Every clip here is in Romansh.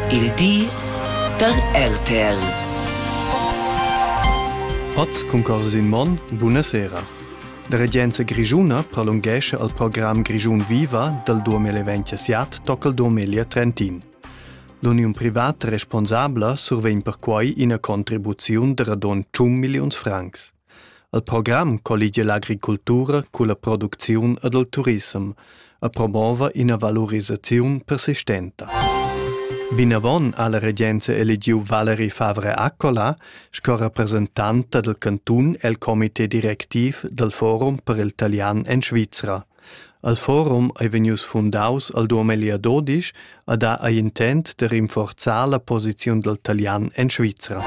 Il di da RTL. Pat cun Corsin Monn, buonasera. La regenza grischuna prolungesce al program Grischun Viva dal 2027 tocca il 2030. L'uniun privata responsabla survegn perquai ina contribuziun da radon 100 milliuns francs. El program colligia l'agricultura culla producziun ed il turissem e promova ina valurisaziun persistenta. Vinavon ha la regenza eligiu Valerie Favre Accola sco representanta del cantun el comité directiv del Forum per il talian en Svizra. El forum ei vegnius fundaus al Duomelia Dodisch ed ha ei intent de rinforzar la posiziun dal talian en Svizra.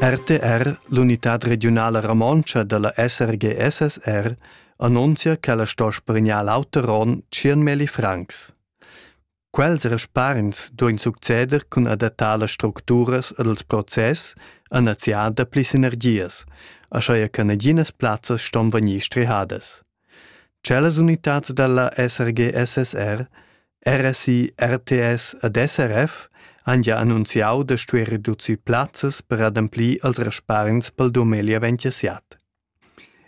RTR, l'unitad regiunala romontscha dalla SRGSSR, annunzia che la sto spregnar l'auter onn 100.000 francs. Quels respargns duein succeder cun adattar las structuras ed els process a naziar dapli sinergias, aschia che naginas plazzas ston vegnir strihadas. Cellas unitads dalla SRG-SSR, RSI, RTS ed SRF han gia annunziau da stuer reducir plazzas per ademplir els respargns pel dumegl aventusiat.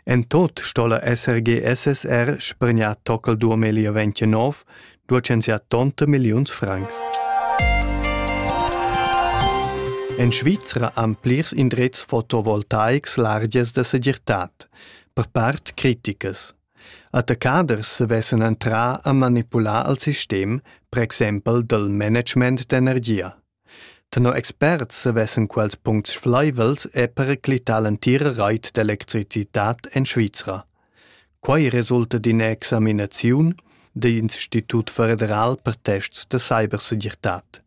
En tut sto'la esser gie SSR spergnà tocal 2029, duechensià tonta milliuns francs. En Svizra han plirs indrezs fotovoltaics largias da segirtad, per part criticas. Attaccaders sevessen entrà a manipular al sistem, per exempel del management d'energia. Tenor experts savessan quels puncts flaivels er periclitar l'entira rait d'electricitad en Svizra. Quai resulta d'ina examinaziun dell'Institut federal per tests da cybersegirtad,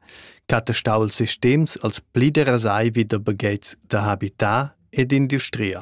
chattestau ils sistems als pli derasai vi da baghetgs da habitar ed industria.